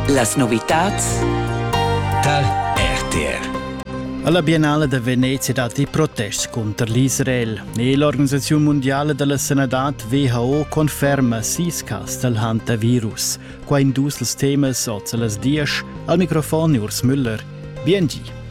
Las novitads tar RTR. Alla Biennale da Venezia datti protests cunter l'Israel e l'Organisazione Mondiale della Sanità WHO conferma sis cas dal hantavirus. Qua in dus els temas oz a las dies al microfon Urs Müller. BNG.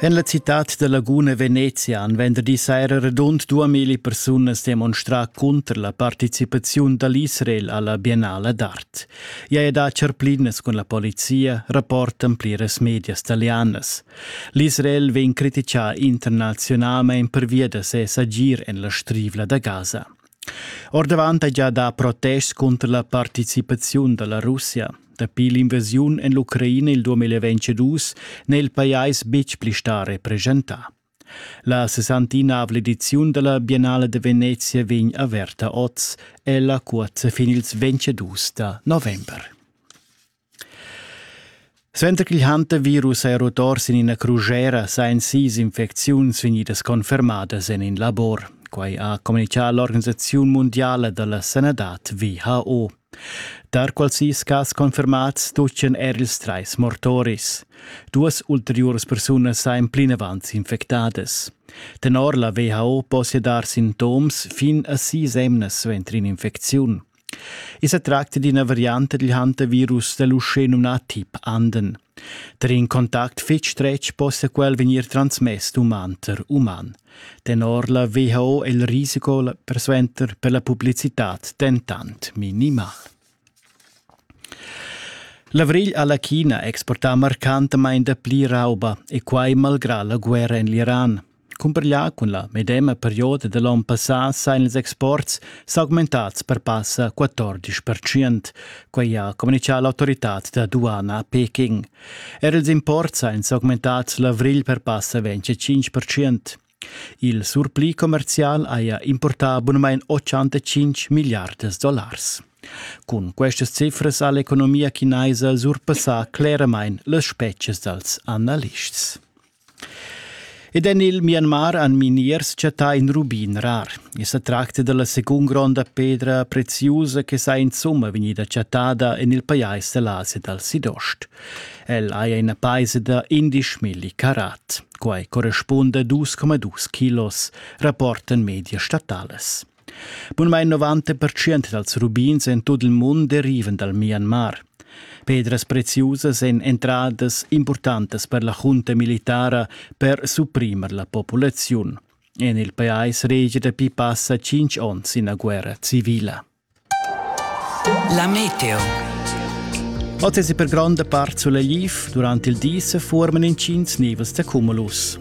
En la citad da Laguna Venezia han venderdi saira radund duamilli persunas demonstrà cunter la participaziun da l'Israel a la Biennala d'art. I è da charplinas cun la polizia, rapportan pliras medias talianas. L'Israel vegn criticà internaziunalmain pervia da ses agir en la Strivla da Gaza. Ordavant hai già dà protests cunter la participaziun da la Russia. Dapi l'invasiun en l'Ucraina il 2022 n'è il pajais betg pli stà represchentà. La 69 ediziun della Biennale de Venezia vegn averta oz, ella cuozza fin ils 22 da november. Suenter ch'igl hantavirus è rotor sin ina crusera sajan sis infecziuns vegnidas confermadas en in labor. Quai ha communitgà l'organisaziun mundiala da la sanadad WHO. Tar quals sis cas confermads stoppien er ils trais mortoris. Duas ulteriuras persunas sajan plinavant infectadas. Tenor la WHO possia dar sintoms fin a sis emnas suenter in'infecziun. I sa tracta d'ina varianta dil hantavirus dall'uschè numnà tip Anden. Tar in contact fitg stretg possa quel vegnir transmess d'umanter uman. Tenor la WHO è il risiko persuenter per la publicitad dentant minimal. L'avrigl ha la China exportà marcantamain dapli rauba e quai malgrà la guerra en l'Iran. Cumparglià cun la medema perioda da l'onn passà sajan ils exports s'augmentads per passa 14 percent. Quai ha communitgà l'autoritad da duana a Peking. Er ils imports sajan s'augmentads l'avrigl per passa 25 percent. Il surpli commerzial haja importà bunamain 85 milliardas dollars. Cun questas cifras ha l'economia chinaisa surpassà cleramain las spezias dals analists. Ed en il Myanmar han miniers chattà in rubin rar. I sa tracta da la segund gronda pedra preziusa che sa insumma vegnida chattada en il pajais da l'Asia dal Sidost. El haja ina paisa da 11 milli carat. Quai correspunda a 2,2 kilos, rapportan medias statalas. Bunmein 90 pertschient dals rubins en tut il mund derivan dal Myanmar. Pedras preziusas èn entradas impurtantas per la junta militara per supprimer la populaziun. En il pajais regia dapi passa tschintg onns ina guerra civila. La meteo. Oz è per gronda part sulegl durant il di se forman intgins nivels da cumulus.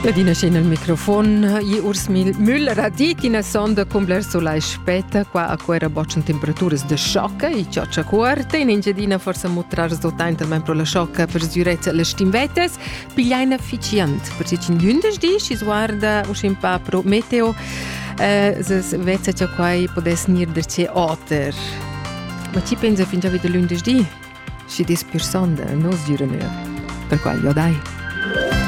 Ladina scena il microfon, i urs mil Müller ha dit ina sonda cum bler solai spetta, qua a quera boccian temperaturas de sciocca e cioccia cuorta, in Engiadina forsa mutrar resultat talmain pro la sciocca per sgürezza las stimvetes, piglia in efficient, per se cin gündes di, si sguarda uschin pa pro meteo, eh, ses vezza cha quai podess nir der ce oter. Ma ci pensa fin già vita lundes di? Si dis pur sonda, no sgüra mehr. Per qual jo dai.